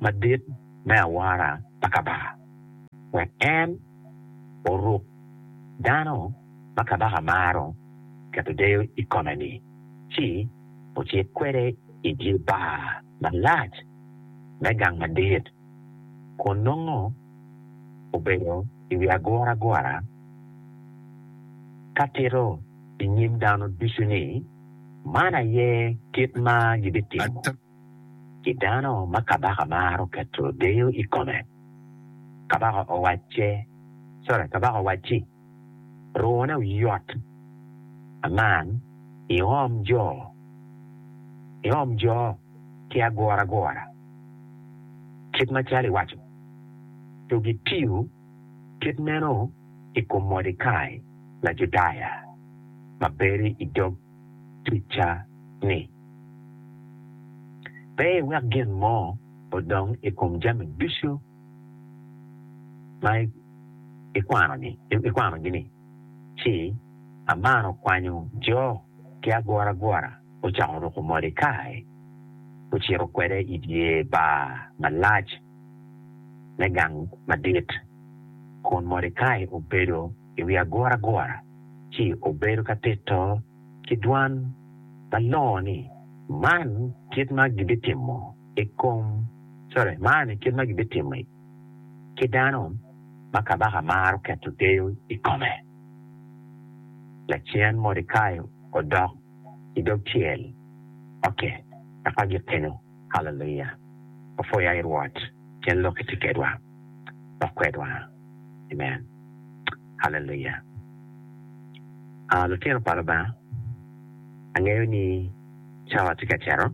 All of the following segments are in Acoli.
madit me awara pa Kabaka, wek en oruk dano ma Kabaka maro keto deyo i kome-ni, ci ocit kwede i dye bar malac me gang madit, kun nongo obedo i wi aguragura ka tito i nyim dano ducu ni, Man aye kit ma gibitimo. ki dano ma kabaka maro keto deyo i kome. Kabaka owacce, sorry, kabaka owacci, Rwone oyot, aman iom jo, iom jo ki aguragura kit macalo iwaco, to gitiyo kit meno i kom Mordekai Lajudaya ma bedo i dog ticca-ni. Pe iwek gin mo odong i kom jami ducu ma ikwanogi-ni, ci amaro kwanyo jo ki aguragura ocako ruko Mordekai, ocito kwede i dye bar malac me gang madit, kun Mordekai obedo. i wi aguragura ci obedo ka tito ki dwan malongo ni, Man e kit ma gibitimo i kom, sorry, man e kit ma gibitimo ki dano ma kabaka maro keto deyo i kome. Lacen Mordekai odok i dog tyel oke, eka gipenyo. Haleluya! Wapwoyo ai Rwot pien lok itye kedwa dok kwedwa. Amen. Haleluya! Aa, lutino pa Lubanga, angeyo ni cawa tye ka cito,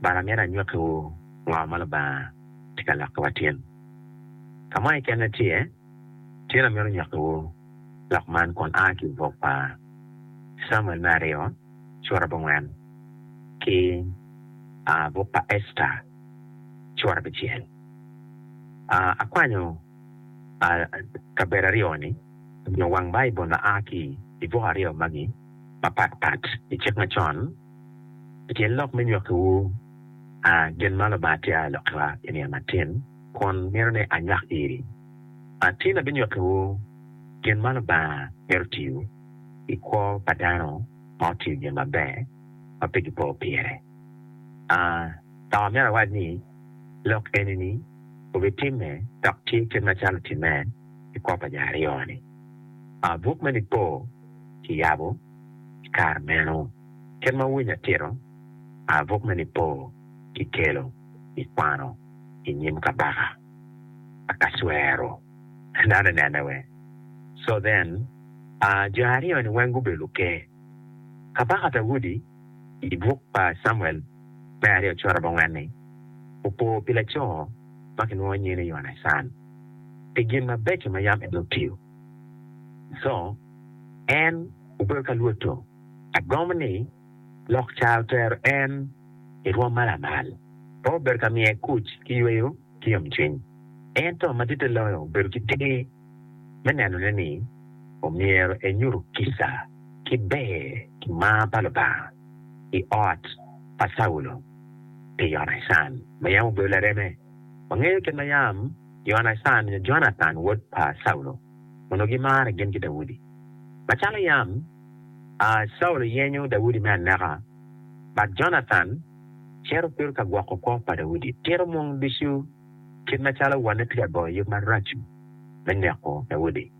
bara amyero anywakkiwu ngo ma Lubanga tye ka lokkiwa tin. Ka mo kekene tye, tyen amyero nywakkiwu lok man kun aa ki i buk pa Camuel me aryo. cura abongwen ki buk pa Esta cura abicel. Akwanyo kabedo aryo ni nyo wang Baibul ma a ki i buk aryo magi mapat pat i Cik Macon i kin lok me nywakkiwu gin ma Lubanga tye alokkiwa i nino matin kun mito ni anywak iri. Tin abinywakkiwu gin ma Lubanga mito tiyo. i kwo pa dano ma otiyo gin maber ma pe gipo pire. A Dok amito awac ni, lok eni-ni obitimme dok tye kit macalo otimme i kwo pa jo aryo-ni. A Buk me Nipo kiyabo i kare meno. Kit ma wuwinyo atito, a Buk me Nipo kikelo i kwano i nyim Kabaka Akacwero. Dano nene weng. So then, jo aryo ni weng gubedo luker. Kabaka Daudi i buk pa Camuel me aryo cura abongwen ni, opo pi laco ma kilwongo nyinge ni Yonacan pi gin mabeco ma yam en otiyo. So en obedo ka lwoto, agomo ni lok ca otero en i rwom ma lamal. Pe obedo ka miye kuc ki yweyo. ki yomcwiny. Ento maditte loyo obedo ki ter me nenone ni omyero enyuto kica ki ber ki mar pa Lubanga i ot pa Caulo pi Yonacan ma yam obedo lareme. Wangeyo kit ma yam Yonacan nyo Jonathan wod pa Caulo onongo gimare gin ki Daudi. Macalo yam Caulo yenyo Daudi me aneka, but Jonathan, cito kwiro ka gwoko kwo pa Daudi. Tito mung ducu kit macalo wanne tye ka goyo yub marac me neko Daudi.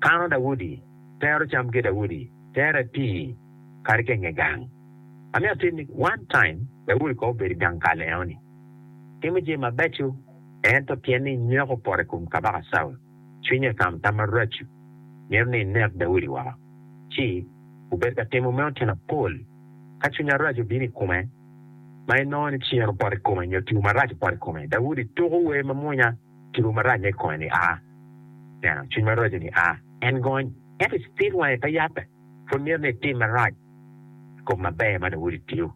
Kano Daudi, tero cam ki Daudi, tero atii kadi ka i nge gang. Amito atit ni one time Daudi kong obedo i gang kal enoni. Timo jami mabeco ento pien ni nyweko opoto i kom kabaka Caul, cwinye otamo tam marac mito ni enek Daudi woko. Ci obedo ka timo meno tyen apol. Ka cwiny arac obino i kome, ma inongo ni cen opoto i kome nyo tipo marac opoto i kome, Daudi tuko wer mamwonya, Tipo marac ma i kome-ni a. Neno, cwiny maraco-ni a. En gony, ento i cipit wange pe yabbe. Pud myero ni etim marac i kop maber ma Daudi tiyo.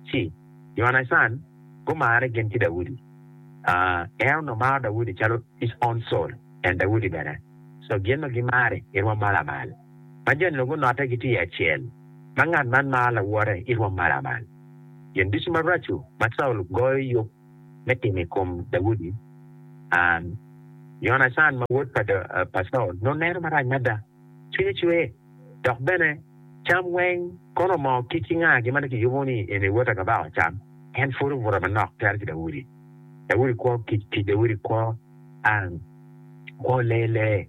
C. Yonacan gumarre gin ki Daudi. A. En onongo maro Daudi calo his own soul, en Daudi bene. So gin ma gimari, irwom ma lamal. ma jo nongo note gitye acel, ma ngat man maro lawote i rwom maramal. Gin ducu maraco ma Caulo goyo yub me timo i kom Daudi, Yonacan ma wod pa Caulo nongo neno marac mada. Cwinye cwer, dok bene cam weng kono moo kic ki nga gin ma nongo kiyubo ni en ewota ka baka ocam. En pwod obuto manok calo ki Daudi. Daudi kwo kic, kic Daudi kwo lee lee.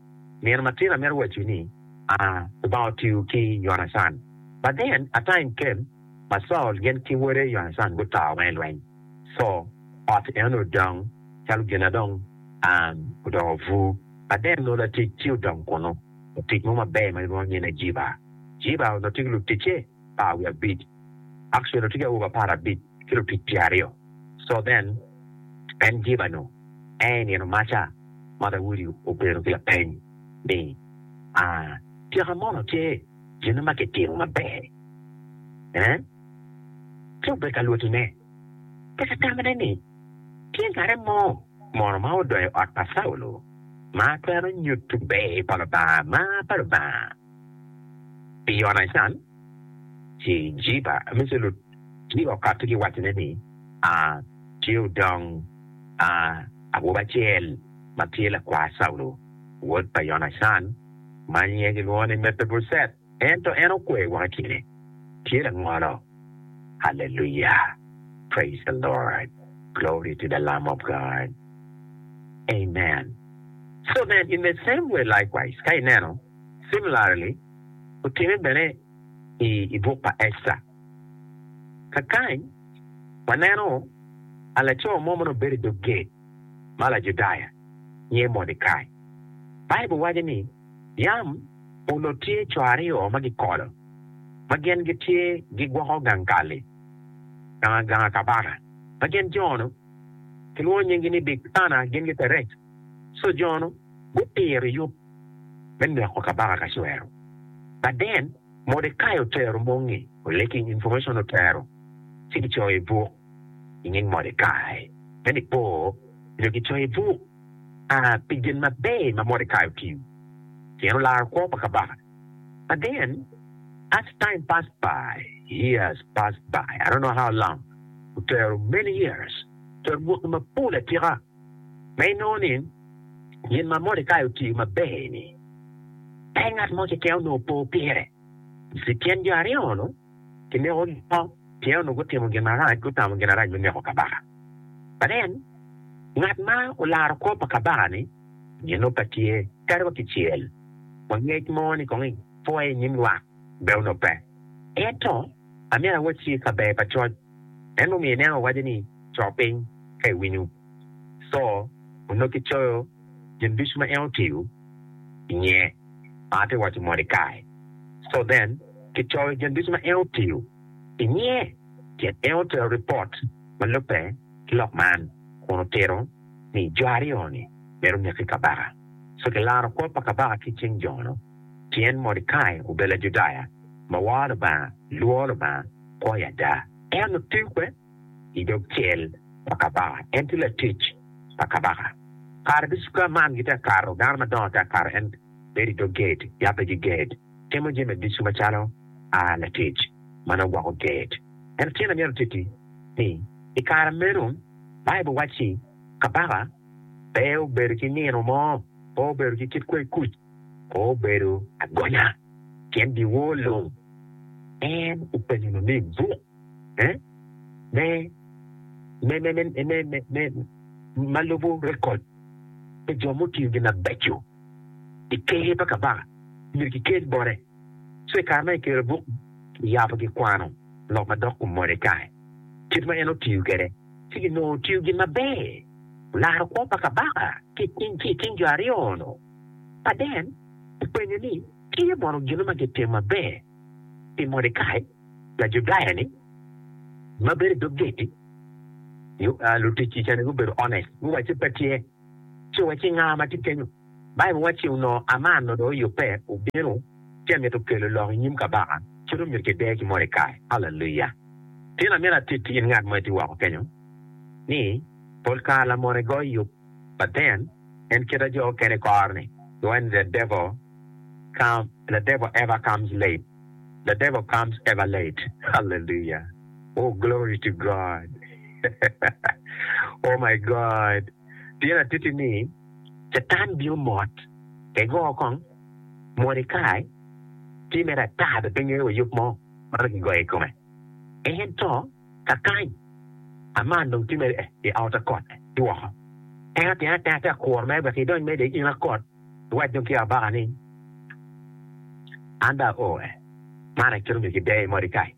Nino matin amito wacci ni Lubanga otiyo ki Yonacan. But then a time came ma Saul gin ki wode Yonacan gutao ma i lweny, so ot enoni odong calo gin na dong odoko bur. But then nongo latic ci odong kunu, latic mo maber ma gilwongo nyine Jiba. Jiba onongo tye ki luticce. par wiye abic. Akcel otye ki awobe apar abic ki lutic tye aryo. So then, en jiba nu en i nino maca ma Daudi obedo ki lapeny ni, Aa, tika mono tye gin ma kitimo maber? Ee, ci obedo ka lwotine. Tika tamane ni tye ngat mo mono ma odonyo i ot pa Caulo ma twero nyutu ber pa Lubanga ma pa Lubanga? Pi Yonacan, ci Jiba me Celut ci okato ki wacone ni, A, tye odong, a, awobi acel ma tye lakwar Caulo, wod pa Yonacan, ma nyinge kilwongo ni Mepibocet, ento en okwe woko i kine, tye langolo. Haleluya! Praise the Lord! Glory to the Lamb of God! Amen! So nen, in the same way likewise, ka ineno. Similarly, otime bene i i buk pa Ecta. Kakany, waneno a laco mo ma nongo bedo i dog gate ma Lajudaya nyinge Mordekai. Baibul waco ni yam onot tye co aryo ma gikolo ma gin gitye gigwoko gang kal-li, gang gang a kabaka, ma gin jo-nu kilwongo nyinggi ni Bigthana, gin ki Terec. Co jo-nu gupiro yub. me neko kabaka Kacwero. Baden, Mordekai otero mongi Collecting Information otero ci kicoyo i buk i nying Mordekai me nipo nyo kicoyo i buk a pi gin maber ma Mordekai otiyo pien olaro kwo pa kabaka. Baden, As Time Passed By, Years Passed By, I Don't Know How Long, otero Many Years otero bwaki mapol atika. Ma inongo ni, gin ma Mordekai otiyo maber-ni, pe ngat mo keken onongo po pire. I kin jo aryo-nu, kinekogi woko pien onongo gutimo gin marac, gutamo gin marac me neko kabaka. But then, ngat ma olaro kwo pa kabaka-ni, ginno pe tye, kadi wa kicel. Wangec mo ni kong ipwoye i nyim lwak, be onongo pe. Ento, amito awacci i kabedo pa coc, En mumiyo ineno awaca ni, Co piny, ka iwinyo. Co, onongo kicoyo gin ducu ma en otiyo i nge ma atye ka waco moni kae. Co then, kicoyo gin ducu ma en otiyo i nge pien en otero ripot ma lubbe ki lok man kun otito ni jo aryo-ni myero oneki kabaka. Co kilaro kwo pa kabaka ki i cing jo-nu pien Mordekai obedo Lajudaya ma woro Lubanga, lworo Lubanga. poi ada. En otikwe i dog cel pa kabaka, en tye latic pa kabaka. Kare duca man gitye ka kato, dano madongo tye ka kato, en bedo i dog gate, yabbe ki gate, timo jami ducu macalo latic ma nongo gwoko gate. Ento tyen amyero atitti ni, i kare meno, Baibul wacci kabaka pe obedo ki nino mo, pe obedo ki kit kwer kuc. obedo agonya pien biwor lung. En openyo nongo ni, Buk me ma lubo rekod pa jo mutiyo gin mabeco i Ker pa Kabaka myero kikel bote? Ci i kare ma kikelo buk, kiyabo gikwano lok madok kom Mordekai, kit ma en otiyo kwede, ci ginongo otiyo gin maber, olaro kwo pa kabaka ki i cing jo aryo-nu. Paden openyo ni, Tye mono gin ma gitimo maber pi Mordekai Lajudaya-ni ma bedo i dog geti? Luticci ca ni gubedo honest, guwacce, Pe tye. Ci owacci, Nga ma tye kenyu? Baibul wacci, Onongo Aman onongo oyubbe, obino, ci emito kelo lok i nyim kabaka, ci dong myero kide ki Mordekai. Haleluya! Tin, amito atitti in ngat mo itye woko kenyu, ni pol kare lamote goyo yub Pa ten, en keta jo okene kor ni, when the devil come, the devil ever comes late, the devil comes ever late, hallelujah, oh glory to God, oh my God, pien atitti ni, Catan bino mot, pe go kong, Mordekai tye mere ata dok pe ngeyo wa yub mo ma nongo kigoyo i kome, ento. Kakany, aman dong tye mere i aota kot ki woko. Teng atenga ateng ate akuro mere wek idony mere de in akot iwac dong ki abaka ni, 'An dong ao e. Man aye kit onyo kideye Morikai.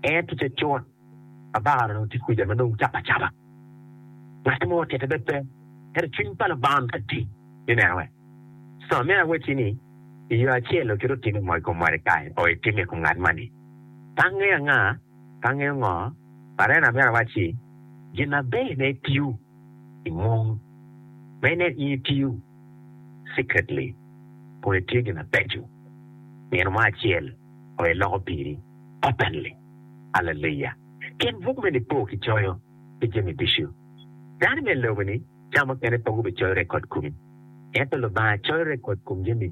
En ticce cut. Abaka dong tye kuca ma dong capa acapa. Ngat mo tite bed pe, ento cwiny pa Lubanga onongo tye atir ni neno en. Soma, Meno awacci ni, i yo acel-lu kit otimo i kom Morikai, o itime i kom ngat man-ni. Tange anga? Tange ngo? Parene abera wacci, gin aber ne itiyo i mung ma inen in itiyo secretly kun itiyo gin abeco. Nino mo acel o iloko piri openly. Aleluya! Kin buk me Nipo ki coyo pi jami ducu. Dano me lobo ni ca mukene pe gubi coyo rekod kumi. Ento Lubanga coyo rekod kom jami.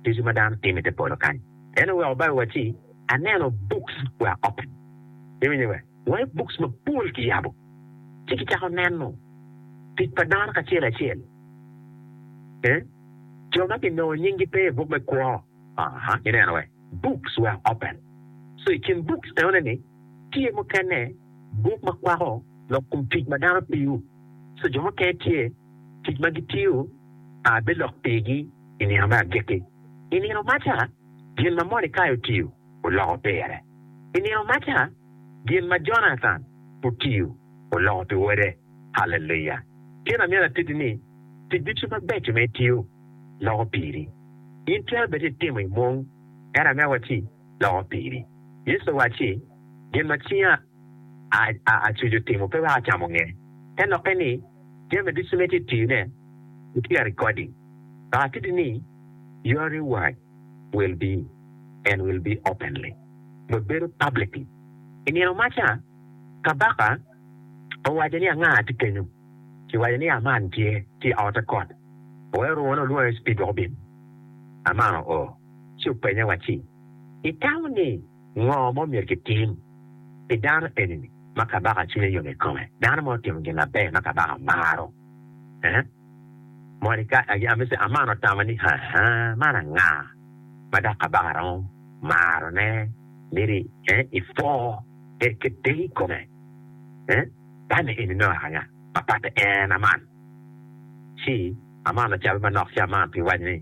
ducu ma dano timo ite polo kany. En oweko bible wa ci aneno books were open. Iwinyo be? Were books mapol kiyabo ci kicako neno tic pa dano kacel acel. Eeh jo ma kinongo nying gi pe ibuk me kwo aha ineno wee books were open so ikin books enone ni tye mukene buk ma kwako lok kom tic ma dano tiyo so jo mukene tye tic ma gitiyo aah bilok pigi. i nino me agikki. I nino maca, gin ma Mordecai otiyo oloko pire. I nino maca, gin ma Jonathan otiyo oloko pi wode. Haleluya! Kena myero atiti ni, tic ducu mabeco ma itiyo loko piri. In twero bed ni itimo i mung, ento ame wa ci, loko piri. Yecu owacci, Gin ma cinga acucu timo pe weko acamo nge. Te lokke ni, Jami ducu ma itye tiyone gutyer i kodi. Dok atiti ni, your reward will be and will be openly, nyo bedo publicly. I nino maca, kabaka owaco ni, Anga tye kenyo? Kiwaco ni, Aman tye, tye i ote kot. Oweyo rwone olwonge ci pige obin. Aman oo. ci openye wacci, Itamo ni ngo ma omyero kitim pi dano eni-ni ma kabaka cwinye yom i kome, dano ma otimo gin maber ma kabaka maro? Aa? Mordecai, agi, ami ci Aman otamo ni, Aa, man anga ma dok kabaka romo marone? Myero i, ee, ipwo en ki te i kome. Ee, tanne eni nongo aka anga ma patte en Aman? Ci Aman ocabbe manok ci Aman pi waco ni,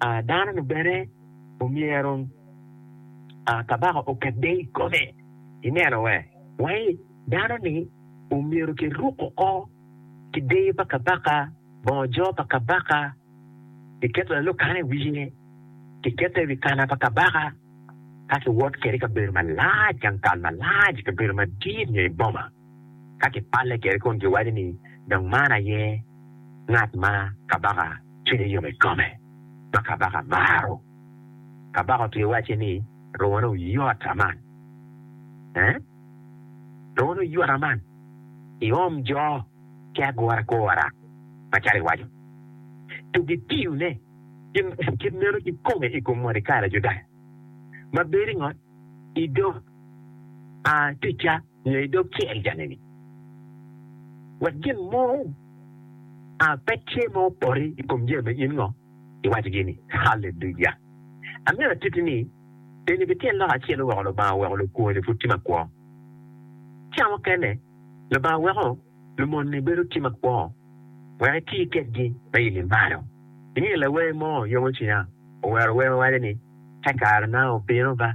dano-nu bene omyero kabaka oket deyo i kome. Ineno we? Wai, dano-ni omyero kiruk oko ki deyo pa kabaka, bongo jo pa kabaka, kiketo lalokane i wiye, kiketo i wi kana pa kabaka, ka kiwot kwede i kabedo malac, gang kal malac, i kabedo madit nyo i boma. Ka kipalle kede kun giwaco ni, Dong man aye ngat ma kabaka cwinye yom i kome, ma kabaka maro. Kabaka otye wacce ni, Rwone oyot aman! Ee, rwone oyot aman! Iom jo ki agura agura macalo iwaco, tu gitiyone gin kit meno kikome i kom Mordekai Lajudaya, ma bedo i ngot i dog aa ticca. nyo i dog cel jangene, wek gin mo a pe tye ma opore i kom jami ma in ngo iwacogi-ni. Haleluya! Angeyo atiti ni, eni bi tyen lok acel weko Lubanga oweko lukwoni pud tye makwo. Ca mukene, Lubanga weko lumon-ni bedo tye makwo wek iti kedgi me yilli malo. Ingeyo lawer mo, Yomo Cwinya owero wer ma waco ni, Ka kare na obino ba,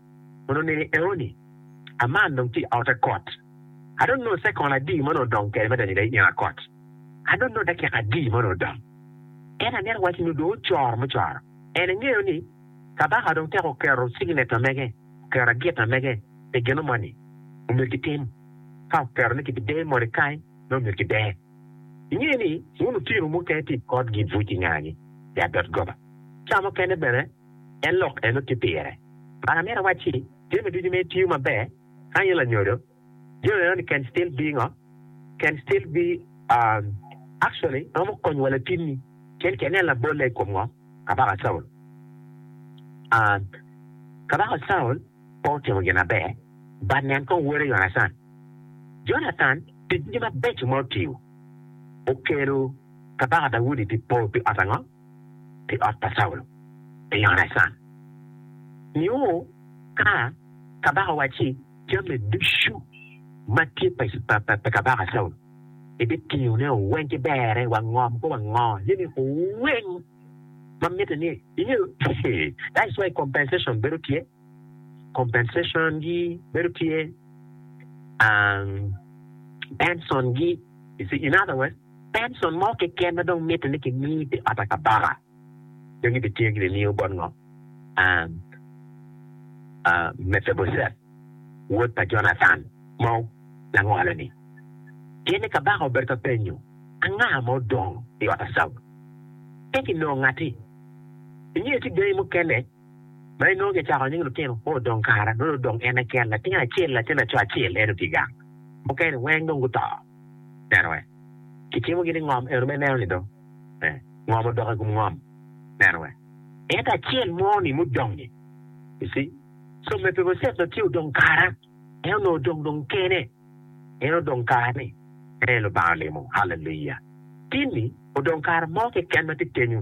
Kun oneni eoni, Aman dong tye i ote kot. Ado nongo cekol adi ma onongo odong kede madani da i nyenga kot? Ado nongo dakika adi ma onongo odong? Ento aneno wacci nongo dong ocoro mucoro. En engeyo ni, kabaka dong tek oketo cigneca mege, oketo agita mege pi gino moni. Omyero gitim. Ka oketo ni kibideyo Mordekai, nongo omyero gideye. Ingeyo ni, wun lutino mukene tye i kot gibuc i ngagi, i adot goba. Ca mukene bene, en lok eno tye pire. Mar amito awacci, jami ducu mere tiyo maber ka in lanyodo. Jami meno ni can still be ngo? Can still be um actually romo konyo wa latinni pien ki nen labolle i kom ngo? Kabaka Caul. Um Kabaka Caul pe otimo gin maber but nen kong wode Yonacan. Jonathan tic ducu mabeco ma otiyo okelo Kabaka Daudi pi po pi ot ango? pi ot pa Caulo pi Yonacan, nio ka kabaka owacci, Jami ducu ma tye pa kabaka Caulo ibitiyone weng ki berre wa ngom kop ango ni miko weng ma mitte ni ingeyo? That's why compensation bedo tye. compensation gi bedo tye um pension gi you see in other words pension mo keken ma dong mitte ni ki mi pi ot pa kabaka dong gi bi tye gi bi miyo bot ngo um Mephibosheth wod pa Jonathan ma langolo ni. Pien ni kabaka obedo ka penyo anga ma odong i ot pa Caul ento ki nongo ngati. Ingeyo tye gangi mukene. ma inongo kicako nying lutino kwo odong kare nongo dong odong en keken latin acel latin laco acel en otye gang mukene weng dong guto neno we kicimo gi ni ngom eno me neno ni dong ngom odoko ikom ngom neno we ento acel mo ni mudong ni you see so Mepiboset dong tye odong kara en onongo odong dong kene en odong kara ni en aye Lubanga olimo haleluya tin ni odong kara mo keken matye kenyu.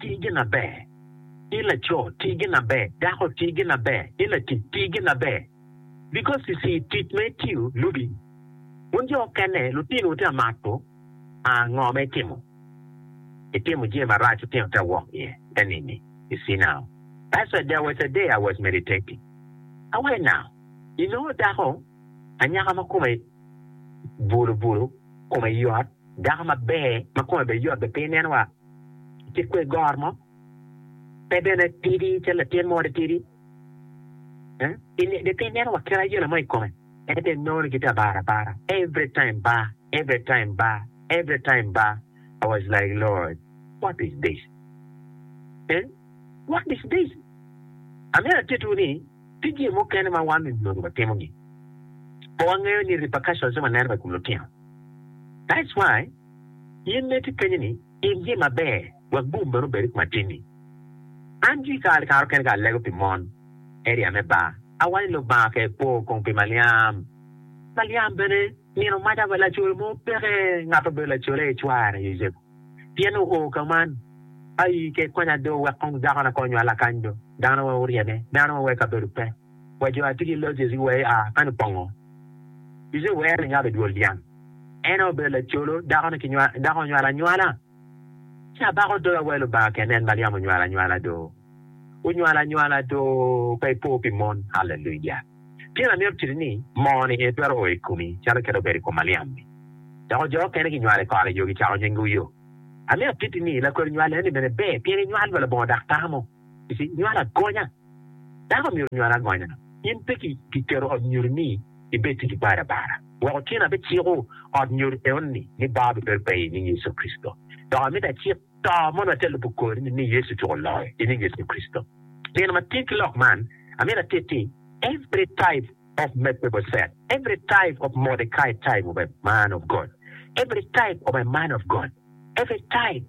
ti ginaber, i laco ti ginaber, dako ti ginaber, i latic ti ginaber. Because you see tic ma itiyo lubi wun jo okene lutinowu te amako a ngo ma itimo, itimo jami marac lutino te awok iye te nini you see now that's why there was a day I was meditating I went now inongo dako anyaka ma kome bulu bulu kome yot dako maber ma kome bene yot bene pe ineno wa ki kwe gor mo, pe bene tidi calo latin mo de tidi. Pe ineno wa kit ayela mo i kome, ento inongo gitye abara abara every time ba, every time ba, every time ba, I was like Lord what is this eeh what is this. Amyero atitwu ni tye jami mukene ma wan onyodo watimo gi pe wangeyo ni repercussions ne waneno wa i kom lutino that's why. In neti ipenye ni, In jee maber wek bum meno obed i kom atinni? An jii kare ki kare okene ka alego pi mon, area me bar, awaco ni Lubanga ker kwo kong pi Maliam. Maliam bene nino maca pa lacolo mo peke ngat obedo lacolo aye cware Yucepu, pien oo ka man. Aii ker konya do wek kong dako na kor nywala kany do, dano wa oryeme, dano wa wa i kabedo pe, wa jo atigi loc ecgi wa ea kany opongo. Yucepu oero ni nyo abe dwol dyang. En aye obedo lacolo, dakone ki nywal, dako onywalo anywala. Ci abako doga wa i Lubanga kene, en Maliam onywalo anywala do. Onywalo anywala do, pe ipo pi mon. Haleluya! Pien amito titi ni, moo-ni en twero o i komi, calo kit obedo i kom Maliam-mi. Dok jo okene ginywalo i kore yo, gicako nyinge Uyo. Amito titi ni, lakodi nywal eni bene ber, pien inywalo pa labongo dak tamo. Nywalo agonya. Dako myero onywal agonya. In pe kiketo ot nyodo ni ibed tic balo abala. Wek otyen abiciko ot nyodo eonni ni baa bibedo pe i nying Yecu Kricito. Dok amito acik to ma onongo atye lubo kodi ni ni Yecu ocuko loyo i nying Yecu Kricito. Tyen matir ki lok man, amito atitti every type of Mephibosheth, every type of Mordecai type of a man of God, every type of a man of God, every type.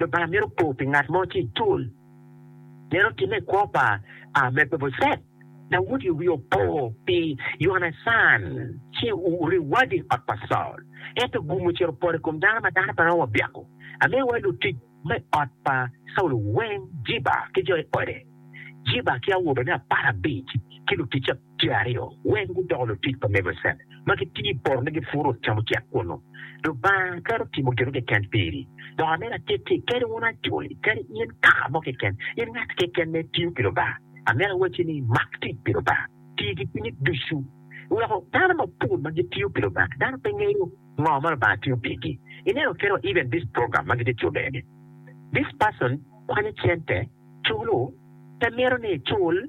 Lubanga mito kor pi ngat mo ci icul. Meno otimme i kwo pa Mepibocet, Daudi wiye opo pi Yonacan ci ouri wadi i ot pa Caul. Ento ogum ocito opoto i kom dano ma dano pe romo wa byako. Amiyo wa lutic ma i ot pa Caul weng, Jiba ki jo i ode, Jiba ki awobene apar abic ki luticce. tye aryo weng gudoko lutic pa Mevocet, ma gitiyo i poto ni gipuro camucek kunnu. Lubanga twero timo gin mo keken piri. Dok amito atittii kadi wun Acoli, kadi in kaka mo keken, in ngat keken ma itiyo pi Lubanga, amito awacci ni mak tic pi Lubanga, tii ki cwinyi ducu. Weko dano mapol ma gitiyo pi Lubanga, dano pe ngeyo ngo ma Lubanga tiyo pigi. Ineno kit wa even this program ma gitye cube ni, this person kwanyo cente, culu, pe mito ni ecul,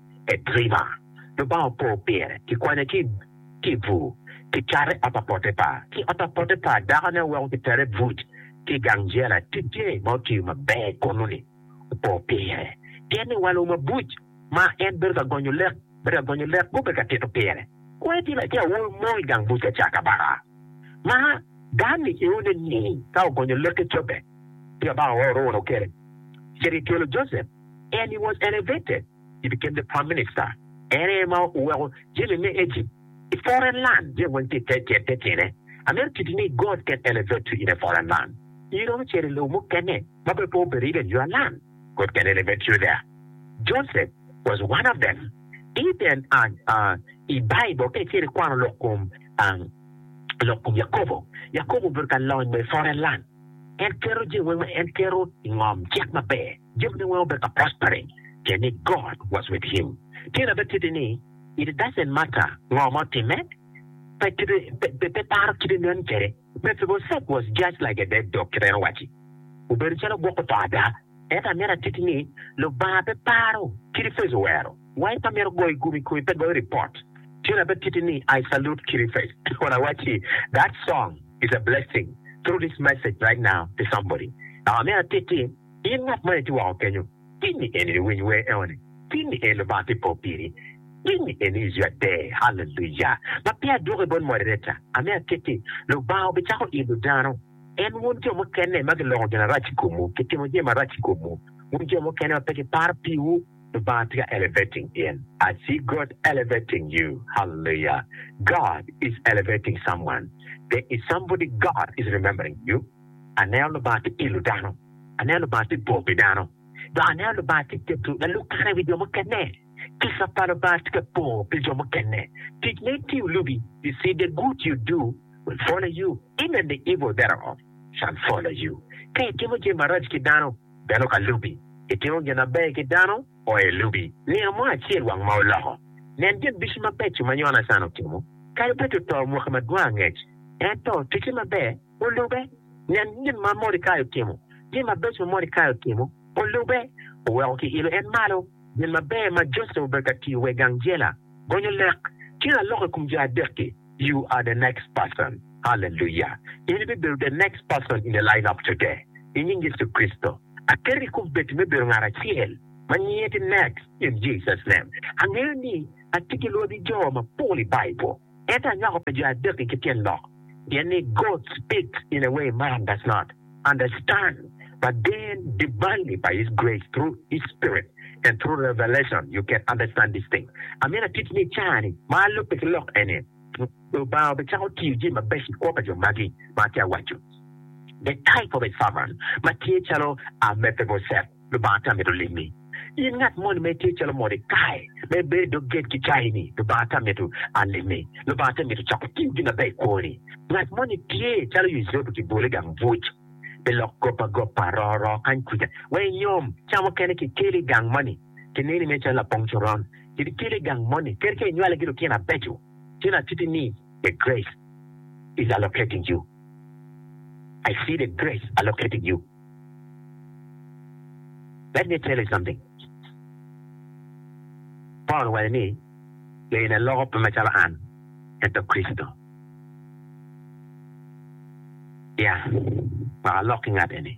e driva. Lubanga opo pire, kikwanye ki i bur, kicate i ot pa Potipar. Ki i ot pa Potipar, dakone oweko kitere i buc ki i gang jela. Ticce ma otiyo maber kunu-ni opo pire, pien ni walo mabuc ma en bedo ka gonyo lek, bedo ka gonyo lek gubedo ka tito pire. Kwai ti latin awobi mo i gang buc ka ca kabaka, ma dano niyone ni ka ogonyo lek ki cobbe, ci kabaka ooro wunu kene, cito i tyelo Josep. and he was elevated he became the prime minister en aye ma oweko jami me Egypt i foreign land jami weng tye i te tyene I mean kit ni God can elevate you in a foreign land in iromo cito i lobo mukene ma bene pe obedo even your land God can elevate you there Joseph was one of them even i Bible ka icito ikwano lok kom lok kom Yakobo Yakobo obedo ka lony ma i foreign land en keto jami weng ma en keto i ngom cik maber. Jami ni weng obed ka prospering pien ni God was with him. Tyen abed kiti ni it doesn't matter ngo ma otimme, pe kite pe pe paro kite nen kede. Mephibosheth was just like a dead dog kibedo waci. Obedo calo gwok oto ada. Ento amyero atiti ni Lubanga pe paro kidi face owero wai pe amyero goyo gumi kumi pe goyo report. Tyen abed kiti ni I salute kidi face kun awaci that song is a blessing through this message right now to somebody. Amyero atiti. In ngat ma itye woko kenyo, pinyi en iniwiny wer enoni? Pinyi en Lubanga tye po piri? Pinyi en iyio ade? Haleluya! Ma peya adwoko i bot Moderator, amiyo akit-ti, Lubanga obicako idho dano. En wun jo mukene ma giloko gin arac i komwu, gitimo jami marac i komwu, wun jo mukene ma pe giparo piwu, Lubanga tye ka elevating in. I see God elevating you. Haleluya! God is elevating someone. There is somebody God is remembering you. Aneno Lubanga tye ilo dano. Aneno Lubanga tye bor pi dano. Dok aneno Lubanga tye keto lalub kare i wi jo mukene. Kica pa Lubanga tye ka po pi jo mukene. Tic ma itiyo lubi, you see the good you do will follow you, even the evil thereof shall follow you. Ka itimo jami marac ki dano, bene okalubi. Itimo gin maber ki dano, o elubi. Nino mo acel wang ma oloko. Nen gin ducu mabeco ma Yonacan otimo. Kadi bed oto mwaki madwong angec, ento ticce maber. olube. Nen gin ma Mordekai otimo, gin mabeco ma Mordekai otimo, olube. Oweko kiilo en malo. Gin maber ma Joseph obedo ka tiyo wa i gang jela, gonyo lek tye ka loko i kom jo adek-ki. You are the next person. Hallelujah! In ibibedo the next person in the line of today i nying Yecu Kricito. Aketo i kom bed me bedo ngat acel ma nyinge tye next in Jesus name. Angeyo ni atye ki lwagi jo mapol i Bible. Ento anywako pi jo adek-ki ki tyen lok, pien ni God speaks in a way man does not understand, but then divinely by His grace through His Spirit and through revelation you can understand these things. Amito atit ni i caa-ni ma alubbe ki lok eni, Lubanga obicako tiyo jami mabeco i kwo pa jo magi ma atye awaco, the type of a servant ma tye calo Amephibosheth. Lubanga tye amito limi. In ngat moni ma itye calo mot ikaye ma ibedo i dog gate ki cayi ni, Lubanga tye amito alimi. Lubanga tye amito coko tim gin maber ikwoni. Ngat moni tye calo Yucepu kibole i gang buc pi lok gop agopa, roo roo kany kuca wek inyom ca mukene ki ikele i gang moni ki neni mere calo lapong coron. Kit ikele i gang moni kadi ka inywale ki lutino abeco tyen atiti ni the grace is allocating you. I see the grace allocating you. Let me tell you something, Paul owaco ni, Yo eni aloko pe macalo an, ento Kricito. Ya, wek alok ki ngat eni.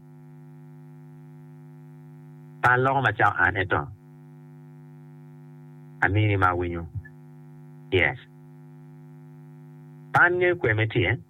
Pe aloko macao an, ento amini ma awinyo. Yes. Pe an ngeyo kwer me tye.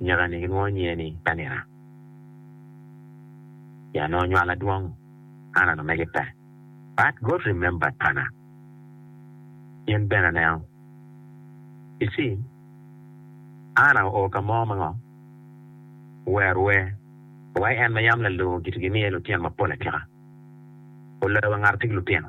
Nyakani gilwongo nyinge ni Penina. Ci en onongo nywalo adwong, Anna omege pe. But God remembered Anna. Ci en bene aneno. You see, Anna oo ka mo ma ngo? Ower wer, owai en ma yam lalur giti gimiye lutino mapol atika. Oloyo wa ngat atye ki lutino.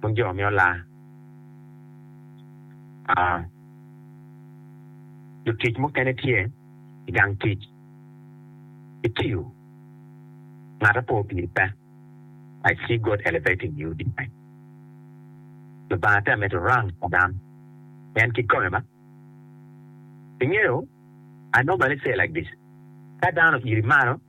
Bot jo me olar, lutic mukene tye i gang tic gitiyo, ngat ape opiri pe. I see God elevating you tonight. Lubanga tye ka mito rang pa dano pien kikome ma. Ingeyo, I normally say like this, ka dano oiri malo,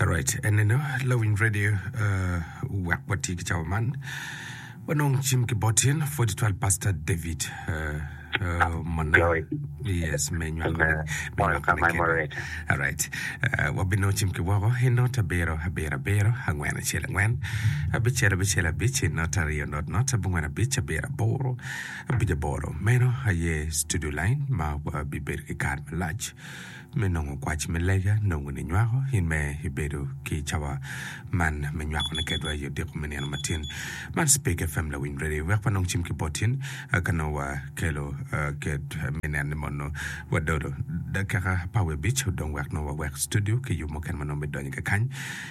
Alright, eneno Lawing Radio uh, wek watye ki cawa man. Wanong cim ki botin 42 Pastor David uh, uh, Mona. Glory. Yes, me nywako Amen. me All nywako time ne kene. moderator. Alright. Uh, wabino cim ki woko i not abiro abiro abiro angwen acel angwen abicel abicel abic i not aryo not not abongwen abic abiro aboro Pi laboro meno aye Studio Line ma wabibedo ki kare malac me nongo kwac me lega nongo ninywako in me ibedo ki cawa man me nywakone kedwa i odiko me nino matin. Man Speke FM Lawiny Radio wek wanong cim ki boti in ka nongo wakelo ked me neno ni mono wadodo dakika apar wiye abic odong wek nongo wawek studio ki yo mukene ma nongo bidonyo kekany.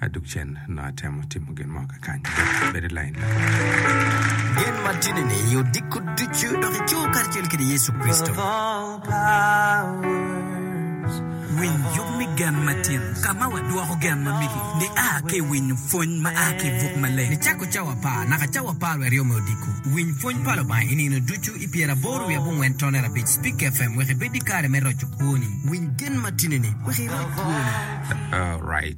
Adug cen nongo atemo timo gin mo kakany. Bed, bed i lain lakany. Gen matini-ni i odiko ducu dok i co karacel kede Yecu Kricito. Winy yub me gen matin, ka ma wadwoko gen ma migi ni a ki i winyo pwony ma a ki i buk maleng. Nicako cawa apar naka cawa apar wiye aryo me odiko, winy pwony pa Lubanga i nino ducu i pyeraboro wiye abongwen tonere abic. Speak FM wek ibed ki kare me roco kwoni. Winy gen matini-ni wek iroc kwoni. Alright.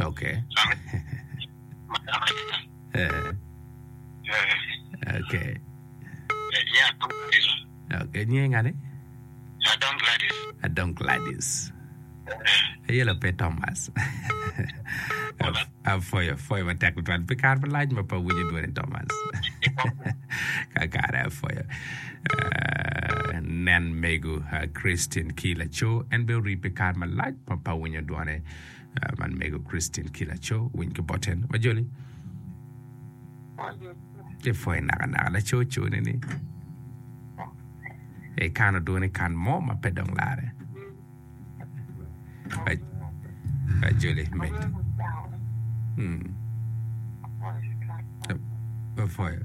Okay. Eh, okay. Okay, nyinge ngani? Adong Gladys. Aye la pe Thomas. Afoyo, afoyo matek tutwal. Pe kar malac ma pa winyo dwoni Thomas. Kakare afoyo. Eh, nen mego ah, Christian ki laco en be ori pe kar malac ma pa winyo dwone. Man mego Christine ki laco winy ki boten ma joni tye pwoyo naka naka laco co ne ni ekano dwone ikan mo ma pe dong lare ajoli med pe pwoyo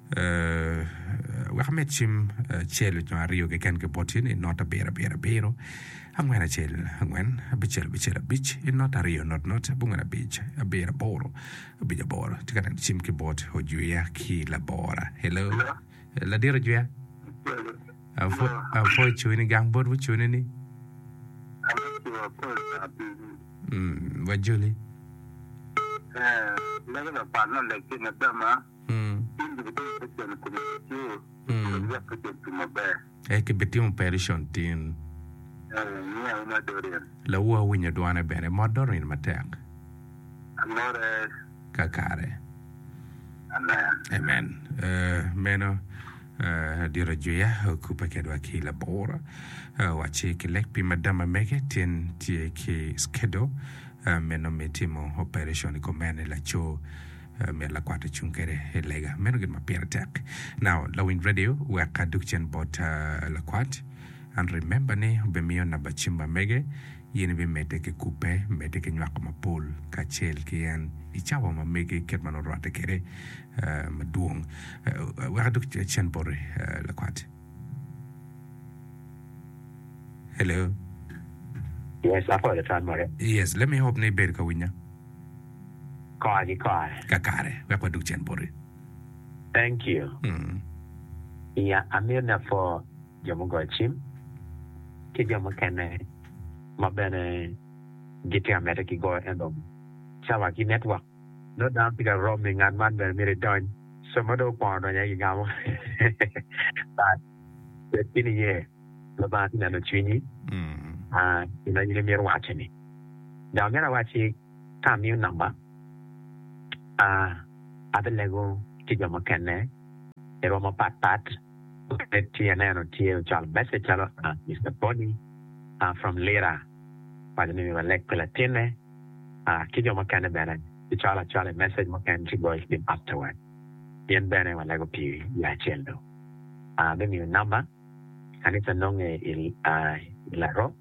Wek amed cim acel nyo aryo keken ki boti ni not abiro abiro abiro, angwen acel angwen, abicel abicel abic, not aryo not not, abongwen abic, abiro aboro, abic aboro. Atye ka neno cim ki bot ojwiya ki labora. Hello. Ladit ojwiya. Apwo icuwe ni gang bot wucune ni. Mm, wajoli. Eh, lagi lapat na lek ki madama. Cen dong kidongo te cen i kom laco obedo lwak te cen tum maber. Ee, kibitimo opereson tin. Ee, niang wu mot Dorian. Lawu awinyo dwane bene. Mot Dorian matek. Amore. Kakare. Amen. Amen. Meno dit ajwiya okubbe kedwa ki labor wacci ki lek pi madam amege tin tye ki schedule meno me timo opereson i kom mene laco. Myero lakwat ocung kwede i lega. Meno gin ma pire tek. Now, lawiny radio wek adug cen bot lakwat. And remember ni obimiyo namba cim ma mege, in ibimedde ki kubbe, medde ki nywako mapol kacel ki en i cawa ma mege kit ma nongo orwatte kwede madwong. Wek adug cen boti lakwat. Hello. Yes, apol atwal more. Yes, let me hope ni ibedo ka winya. Kora ki kore. Kakare, wek wadug cen boti. Thank you. Iya amito ni apwo jo mugoyo cim ki jo mukene ma bene gitye ka medde ki goyo ento cawa ki network nongo dano tye ka romi ngat man bene myero idony somo dong okwono donyo aye gigamo bad bed ki niye. ma banga tye neno cwinyi pi ma in imito wace ni. Dok myero awacci ka amiyo namba abilego ki jo mukene i rwom mapat pat mukene tye aneno tye ocwalo meceg calo Mister Bony from Lira owaco ni myero waleg pi latinne ki jo mukene bene kicwalo acwala i meceg mukene ci goyo ki afterward pien bene walego pi yo acel dong me miyo namba. Kanica nonge i Laroo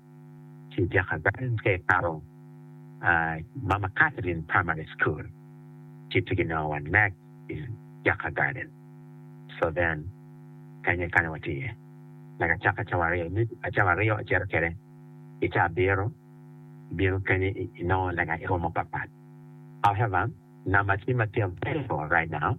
ci i dyaka gang ka ikato Mama Catherine Primary School ci pe ginongo wa nek i Jaka Garden so then kany aye kany watye iye naka acaka cawa aryo me cawa aryo acito kede i cawa abiro ibino kany inongo lega iromo papat however number tye matino very low right now.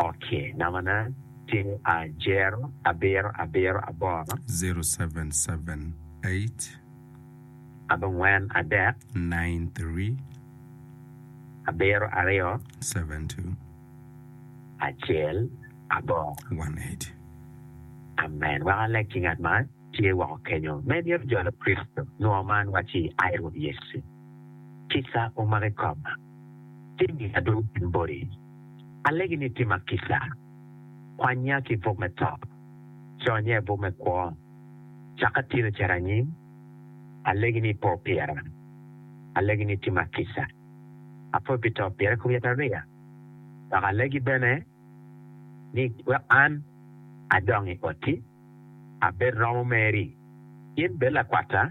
Ok, nambana tye ajero abiro abiro aboro. Zero seven seven eight. Abongwen adek. Nine three. Abiro aryo. Seven two. Acel aboro. One eight. Amen. Wek aleg ki ngat ma tye woko kenyo me myero jo Lukricito nwo man waci, Ai Rwot Yecu, kisa omaki koma. Jami adwogi gin boti, alegi ni tima kica, kwanya ki i buk me to, conya i buk me kwo, caka atino cito anyim, alegi ni ipo pira, alegi ni itima kica, apo pi to pira i kom yatariya, dok alegi bene ni wek an adong i oti, abed romo meri, in bed lakwata.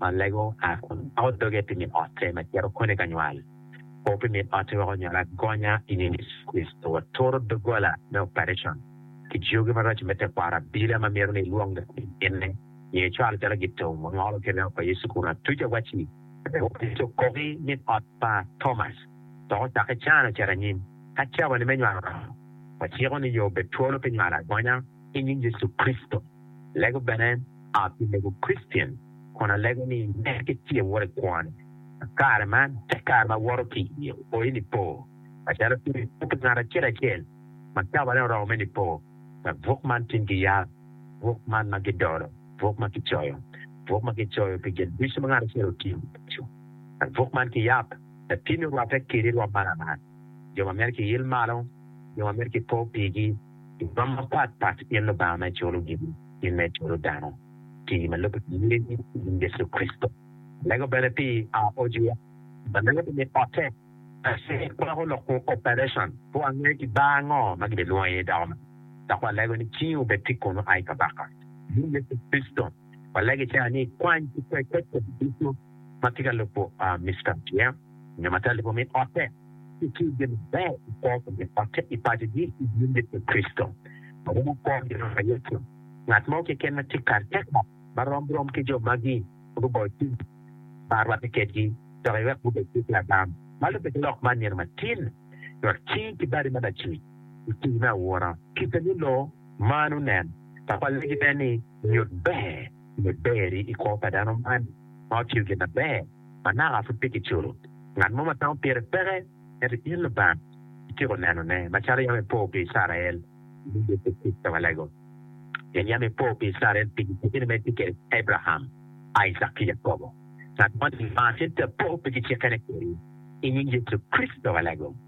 ma lego a kun pako doge pi min otte ma cito koni ka nywal. Kor pi min otti weko nyuto agonya i nying Yecu Kricito wa. Turo doggola me oparecon ki jogi maraco me tekwaro abila ma mito ni ilwong dok i kinne nyo icwal calo gitong ma ngolo ki remo pa Yecu kun atuca wacci wek opid okoki min ot pa Thomas dok ocakki can ocit anyim. Ka cabani me nywal oromo, waciko ni yo obed twolo pi nywal agonya i nying Yecu Kricito. Alego bene a pi lego Christian kun alego ni nen ki tye woro i kwon ma kare man tek kare ma woto ki i oyi nipo macalo tung i buk ki ngat acel acel ma kaba ne oromo me nipo wek buk man tin ki yab buk man ma ki dolo buk ma ki coyo buk ma ki coyo pi gin ducu ma ngat acel otiyo ducu wek buk man ki yab latinni orwate kedi rwom man aman jo ma meri ki il malo jo ma meri ki po pigi. I kwan mapat pat, gin lubanga me culu gigi, gin me culu dano, ti ma lubbe ki yee i nying Yecu Kricito. Alego bene pi Aojuwa, ma lenge pi mit ote, ace kwako lok ku operation, pe wange i bar ango ma gibe lwongo iye dako man, dok walego ni cingi obed tic kunu ai Kabaka. I nying Yecu Kricito, walego ica ni, kwany ki kwe kwed kodi ducu. ma tye ka lubo Mister Chiang nyo ma tye ka lubo min otte ci tye gin maber ki kwo pa min otte i paco gi i nyim Yecu Kricito. Ma romo kwo ki Rwot wa Yecu, ngat mo keken ma tye kare tek nok ma rom rom ki jo magi ma guboyo cwiny ma rwatte kedgi dok iwek gubed ki Adam ma lubbe ki lok man nino matin Rwot ci ki badi ma lacuc i tii me aura. Kite ni loo man onen, Papa legi ne ni nyut ber. me ber-ri i kwo pa dano man ma otiyo gin na ber ma naka pud pe kiculo. Ngat mo ma tamo pire peke, ento in Lubanga ityeko nenone, macalo yam ipo pi Icrael, ni bed pe tic ka balego, pien yam ipo pi Icrael pi gicikkini ma itye kwede ki Abraham, Icak ki Yakobo. Ngat moni Lubanga cente apo pi gicikkene kwedi, i nying Yecu Kricito balego.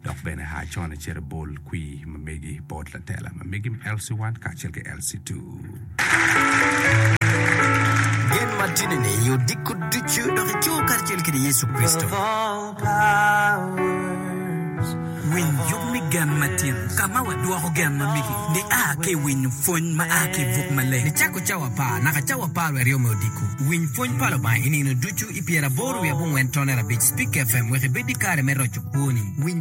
Dok bene aa con acito bol kwir ma megi bot latela ma megi me LC1 kacel ki LC2. Gen matidi-ni i odiko ducu dok i coo karacel kede Yecu Kricito. Winy yub me gen matin ka ma wadwoko gen ma megi ni a ki i winyo pwony ma a ki i buk maleng ni cako cawa apar naka cawa apar wiye aryo me odiko. Winy pwony pa Lubanga i nino ducu i pyeraboro wiye abongwen tonere abic Spik FM wek ibed ki kare me roco kwoni.